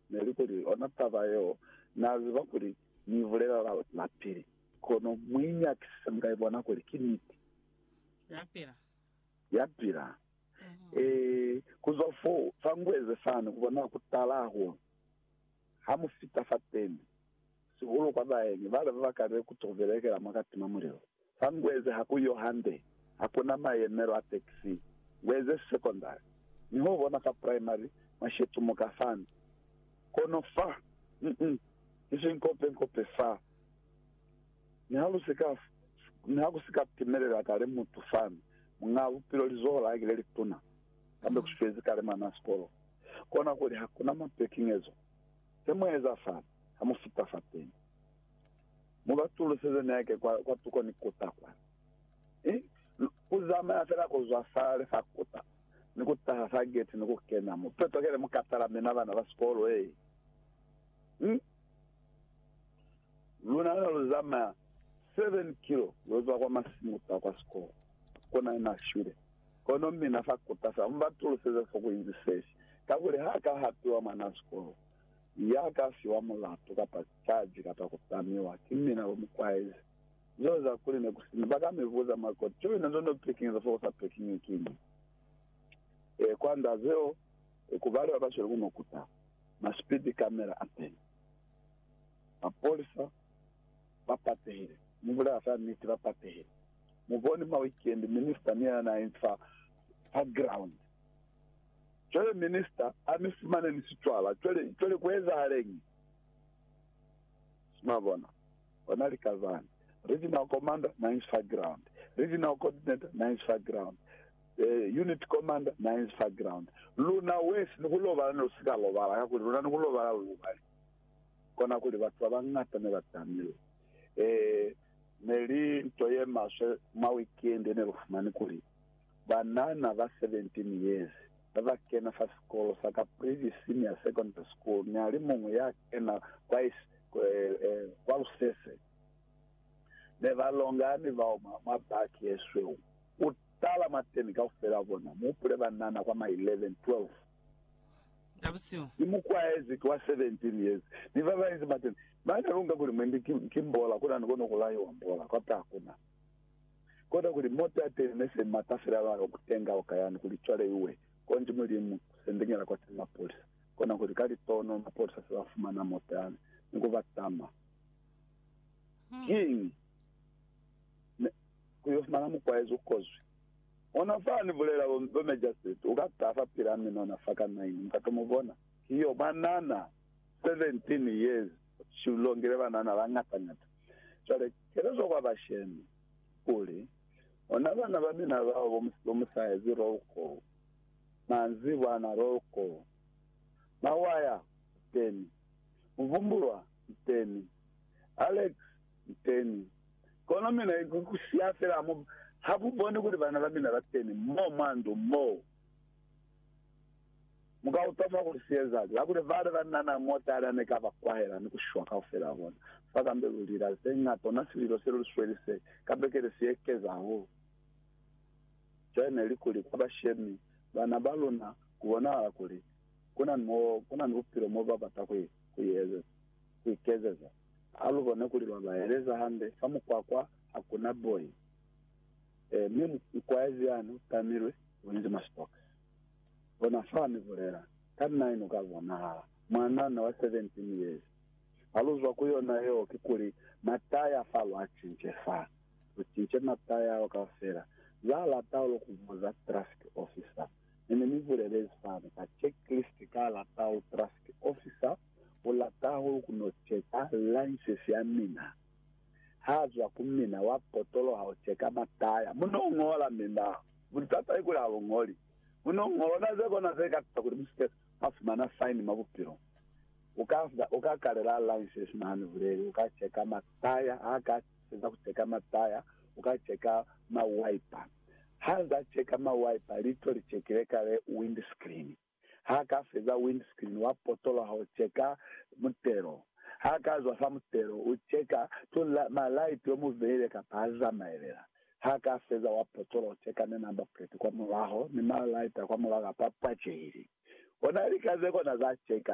Neli kuli ona taba yeo na ziba kuli ni ibulela la, lapili, kono muinyakisise muka ibona kuli ki niti. Yapila. Yapila. Ee, kuzwa fo, fa ngueze fani, kubona kutala hahulu, ha mu fita fateni, sihulu kwa baeni bale babakalile kutubelekela mwa katima mulilo. Fa ngueze ha ku yo hande, ha ku na mayemelo a taxi. Ngueze secondary, mi ho bona fa primary mwa shetumuka fani. Kono fa, mm, ki sinkopenkope fa. Mi ha lu si ka, mi ha ku si ka timelela kale mutu fani, muñaa bupilo lizoho la ki le lituna, kambe ku swezi kale mwanaa sikolo. Kona kuli ha ku na mapekingezo. He mu eza fani, ha mu fita fateni. Mu ba tuluseze neke kwa, kwa tuko ni kuta kwa. I, ku zamaya fela ku zwa fale fa kuta, ni ku taha fa geti ni ku kena mo. Peto kele mu ka tala mina bana ba sikolo e. Hmm. Luna ne lu zamaya seven kilo lo zwa kwa masimu kuta kwa sikolo. Kuna na shwile. Kono mina fa kuta fela, mu ba tuluseze fo ku inzi sesi. Kakuli ha ka hapiwa mwana wa sikolo. Ya ka fiwa mulatu kapa caji kapa ku tamiwa, ki mina bo mu kwaezi. Zeo za kuli ne ku sina, ba ka mi buza mwa koti, Joina, nzo no pikingiza fo u sa pikingi ki mi? E, kwanda zeo, e, ku bali ba ba sweli ku no kuta, ma speed camera a teni. Mapolisa ba patehile. Mu bulela fa niti, ba patehile. Mu boni ma weekend, minister ni yena na infa fa ground. Cwale minister a mi fumane ni sicwala. Cwale, cwale ku ezahaleñi? Mwa bona? Ona lika zani. Regional commander na inzi fa ground. Regional coordinator na inzi fa ground. Eh, unit commander na inzi fa ground. Luna wesi ni ku lobala ne lu si ka lobala, kakuli luna ni ku lobala lu lubali. Kona kuli batu ba bañata ne ba tamile. Eh, ne li nto ye maswe mwa weekend ye ne lu fumani kuli, banana ba 17 years ba ba kena fa sikolo sa Caprivi Senior Secondary School ni a li muñwi ya kena kwa kwa lusese ne ba longa ni bao mwa, mwa baki ye sweu. U tala mwateni kaufela wa bona, mu hupule banana kwa ma 11, 12. Ka busihu. Ni mukwaezi ki wa 17 years, ni ba banzi mwateni ba ne lunga kuli mwendi ki, ki mbola, kuna ni kona ku laiwa mbola, kwata hakuna. Koda kuli mota ya teñi ne se mata fela ba yo kutenga oka yani kuli cwale iwe konji mulimu sendeñela kwa teñi mapolisa. Kona kuli ka litono mapolisa se ba fumana mota yani ni ku ba tama. Kiñi? Ne ku yo fumana mukwaezi u kozwi. Ona fa ni bulela bo, bo Mejaseti u ka taha fa pila mine ona fa ka naini, mu ka to mu bona. Ki yo banana 17 years, ki u longile banana ba ngata ngata. Cwale Kelezwa kwa bashemi, kuli, Ona bana ba mina bao bo, bo mu sa ezi roll call, manzibwa ana roll call, Mawaya, Nteni. Muvumbulwa, Nteni. Alex, Nteni. Kono mina ku siya fela, ha mu, ha mu boni kuli bana ba mina ba teni mo mwa ndu moo? Mu ka utama kuli siezali, kakuli bale ba na na motala ne ka ba kwahela ni ku shwa kaufela bona. Fa kambe lu lila ze ñata, ona sililo se lu sweli se ka bekele si ekeza hahulu. Cwale ne li kuli kwa bashemi bana ba luna ku bonahala kuli ku na ni mo ku na ni bupilo mo ba bata ku ku iezeza, ku ikezeza. Ha lu bone kuli lwa ba eleza hande fa mukwakwa ha ku na boi. E, mi mukwaezi yani u tamilwe. Ulinze mwa sibokisi. Bona fa ni bulela. Kanna inu ka bonahala. Mwanana wa 17 years. Ha lu zwa ku yona yeo, kikuli, mataya fa lu a cince fa. Lu cince mataya ao kaufela. Za lata lu ku buza traffic officer. Ne ni mi bulelezi fani, ka checklist ka lata lu traffic officer u lata hulu ku no cheka license ya mina. Haazwa ku mina wa potolo haucheka mataya, muno uñola milaho. Butata ki kuli haluñoli muno uñolona zekona zekatisa kuli musike mwa fumana faini mwa bupilo. Uka, uka kalela license mwa hanibuleli, uka cheka mataya, haka feza kucheka mataya, uka cheka ma wiper. Haza cheka ma wiper, lito lichekile kale windscreen. Ha ka feza windscreen wa potola ho cheka mutelo. Ha ka zwa fa mutelo u cheka to ma light yo mu veile kapa ha zamaelela. Ha ka feza wa potola ho cheka ni number plate kwa mulaho ni ma light a kwa mulaho kapa pwachehile. Ona lika ze kona za cheka.